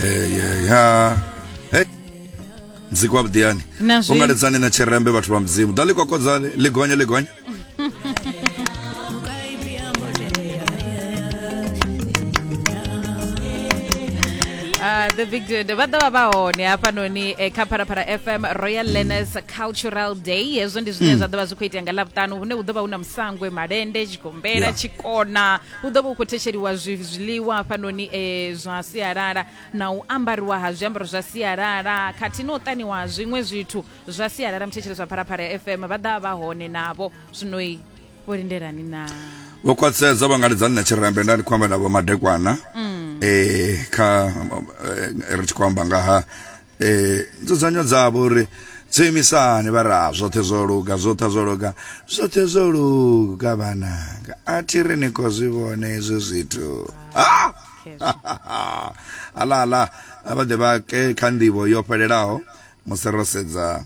Eh, yeah, yeah. Hey. mziki wa vhuḓiyani Na zwi- ungaledzani na tshirembe vhathu vha mudzimu ḓa ḽi kokodzani ḽi gonya ḽi gonya Ah, the big dude vha ḓovha vha hone hafhanoni eh, kha pharapara fm royal learners cultural day hezwo ndi zwine zwa ḓovha zwi khou itea nga ḽavhutanu hune hu ḓovha hu na musangwe malende tshigombela Yeah. tshikona hu ḓo vha hu khou thetshelwa zwiḽiwa hafhanoni e, zwa sialala na u ambariwa ha zwiambaro zwa sialala khathihi na u ṱaniwa ha zwiṅwe zwithu zwa sialala muthetshelesi wa pharaphala ya fm vha ḓa vha hone navho zwinoi vho lindelani na vho khwaṱhisedza vha nga lidza nṋe tshirembe nda ndi khou amba navho madekwana um kha eh, ri tshi khou amba nga ha Eh, nzudzanyo dzavho uri dzo imisani vha ra zwoṱhe zwo luga zwoṱha zwo luga zwoṱhe zwo luga vhananga a thi ri ni khou zwi vhona hezwi zwithu Ah! ala ala a vha ḓe vha ke kha nḓivho yo fhelelaho musi ro sedza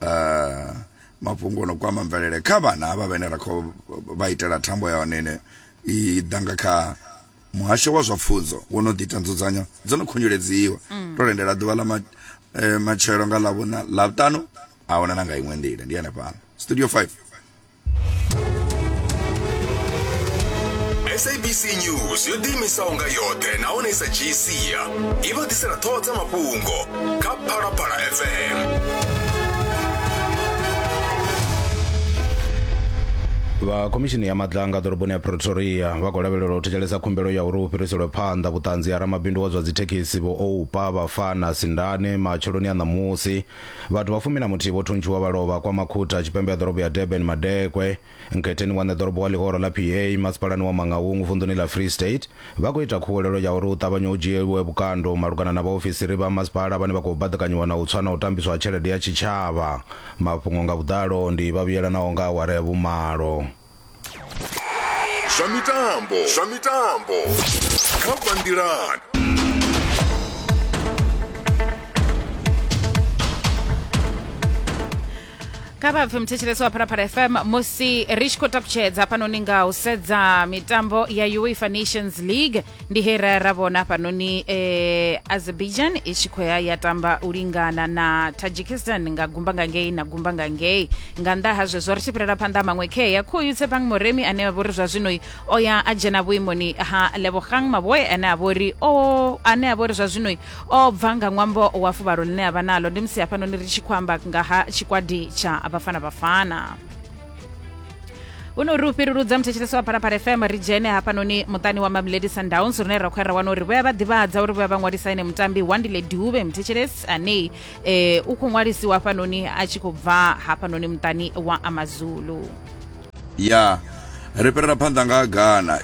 eh, mafhungo o no kwama mvelele kha vhana havha vhene ra khou vha itela thambo ya hone ine i ḓa nga kha muhasho wa zwa pfunzo wo no ḓita nzudzanyo dzo no khunyeledzi-wa mm. to lindela ḓuvha ḽa ma, eh, matshelo nga ḽavhuna ḽavhuṱanu a huna na nga iṅwe nḓila ndi hanefhala studio 5 sabc news yo ḓiimisaho nga yoṱhe nahone i sa dzhii sia i vha ḓisela ṱhoho dza mafhungo kha phalaphala fm vha khomishini ya madlanga ḓoroboni ya pretoria vha khou lavhelela u thetshelesa khumbelo ya uri hu fhiriselwe phanḓa vhuṱanzi ha ramabindu wa zwa dzithekhisi vho oupa vhafana sindane matsheloni a ṋamusi vhathu vha fumi na muthihi vho thuntshiwa vha lovha kwa makhutha tshipembe ya ḓorobo ya durban madekwe Nkhetheni wa ṋeḓorobo wa ḽihoro ḽa PA masipalani wa Mangaung vunḓuni ḽa Free State vha khou ita khuwelelo ya uri hu ṱavhanye hu dzhielwe vhukando malugana na vhaofisiri vha masipala vhane vha khou baḓekanyiwa na u tswa na u tambiswa ha tshelede ya tshitshavha. Mafhungo nga vhuḓalo ndi vha vhuyelanaho nga awara ya vhumalo. Zwa mitambo zwa mitambo kha bva nḓilani. kha vha pfe muthetshelesi wa phalaphala fm musi ri tshi khou takutshedza hafhanoni nga u sedza mitambo ya uefa nations league ndi he ra ra vhona hafhanoni eh, azerbaijan i tshi khou ya ya tamba u lingana na tajikistan nga gumba nga ngei na gumba nga ngei nga nnḓa ha zwezwo ri tshi fhirela phanḓa maṅwe khea khoyu tshepang moremi ane a vhori zwa zwino o ya a dzhena vhuimoni ha lebogang maboe ane a vhori o ane a vhori zwa zwino O bva nga ṅwambo wa fuvhalo ḽine a vha naḽo. Ndi musi hafhanoni ri tshi khou amba nga ha tshikwadi tsha Bafana Bafana. Huno ri u fhiruludza muthetshelesi wa Phalaphala FM ri dzhene hafhanoni muṱani wa Mamelodi Sundowns rune ra khou ya ra wana uri vho ya vha ḓivhadza uri vho ya vha ṅwalisa ene mutambi Wandile Dube muthetshelesi ane eh, u khou ṅwalisiwa hafhanoni a tshi khou bva hafhanoni muṱani wa Amazulu. ya ri fhirela phanḓa nga Ghana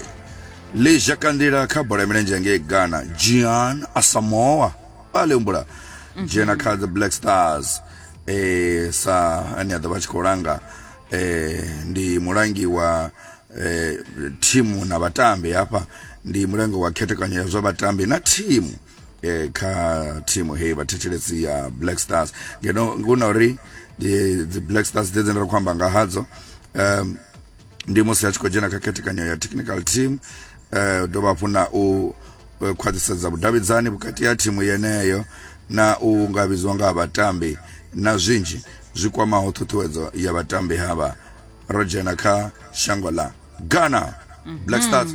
Lee zha kandela kha bola ya milenzhe ngei Ghana, Gyan Asamoah a lembula mhm. dzhena kha the Black Stars eh sa ane a ḓo vha tshi khou langa eh ndi mulangi wa eh thimu na vhatambi hafha ndi mulangi wa khethekanyo ya zwa vhatambi na thimu eh kha thimu heyi vhathetshelesi ya Black Stars ngeno ngona uri the Black Stars dzedze ndira khou amba nga hadzo um ndi musi a tshi khou dzhena kha khethekanyo ya technical team eh dovha hafhu na u eh, khwaṱhisedza vhudavhidzani vhukati ha thimu yeneyo na u nga vhidzwa nga ha vhatambi na zwinzhi zwi kwamaho ṱhuṱhuwedzo ya vhatambi havha ro dzhena kha shango ḽa ghana black stars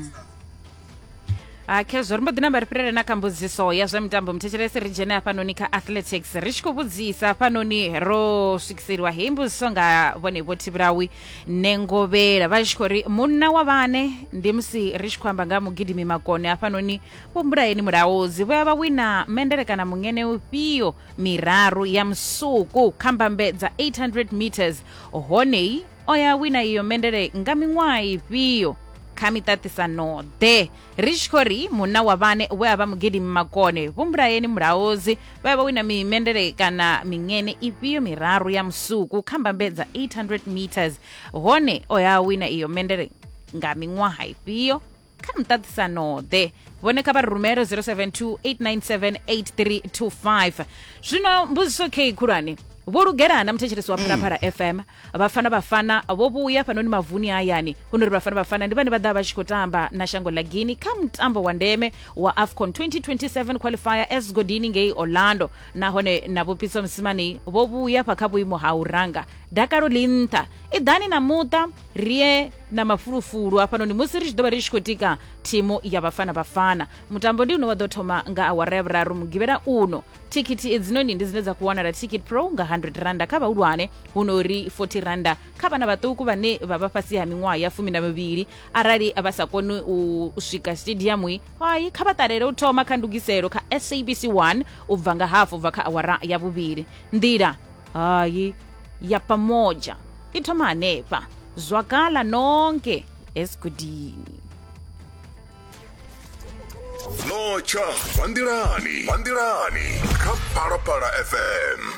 ha khezwo ri mbo ḓi namba ri fhirele na kha mbudziso ya zwa mitambo muthetshelesi ri dzhene hafhanoni kha athletics ri tshi khou vhudzisa hafhanoni ro swikiseliwa heyi mbudziso nga vhone vho thivhulawi nengovhela vha tshi khou ri munna wa vhane ndi musi ri tshi khou amba nga mugidimi makone hafhanoni vho mbulayeni mulaudzi vho ya vha wina mendele kana mungene ufhio miraru ya musuku kha mbambe dza 800 meters honei o ya wina iyo mendele nga miṅwaha ifhio kha miṱaṱisano-ḓe ri tshi khou ri munna wa vhane we a vha mugidimi makone vho mbulayeni mulaozi vha ya vha wina mimendele kana miṅene ifhio miraru ya musuku kha mbambedza 800 meters hone o ya wina iyo mendele nga miṅwaha ifhio kha muṱaṱisano-ḓe vhone kha vha rumele 0728978325 zwino mbudziso kei khulwane vho lugela na muthetshelesi wa mm. phalaphala fm vhafana vhafana vho vhuya fhanoni mavuni hayani hu no ri vhafana vhafana ndi vhane vha ḓa vha tshi khou tamba na shango ḽa guini kha mutambo wa ndeme wa afcon 2027 qualifier esgodini ngei orlando nahone na vhupitso musimani vho vhuya fha kha vhuimo ha u ranga dakalo ḽi nṱha i ḓani na muṱa rie na mafulufulu hafhanoni musi ri tshi ḓo vha ri tshi khou tika thimu ya vhafana vhafana mutambo ndi une wa ḓo thoma nga awara ya vhuraru mugivhela uno thikhithi edzinoni ndi dzine dza khou wanala ticket pro nga 100 randa kha vhahulwane hu no uri 40 randa kha vhana vhaṱuku vhane vha vha fhasi ha miṅwaha ya fumi na mivhili arali vha sa koni u swika stadiumu hayi kha vha ṱalele u thoma kha ndugiselo kha sabc 1 u bva nga hafu bva kha awara ya vhuvhili nḓila hayi ya pamoja i thoma hanefha zwakala nonke esigudini notsha vha nḓilani vha nḓilani kha phalaphala fm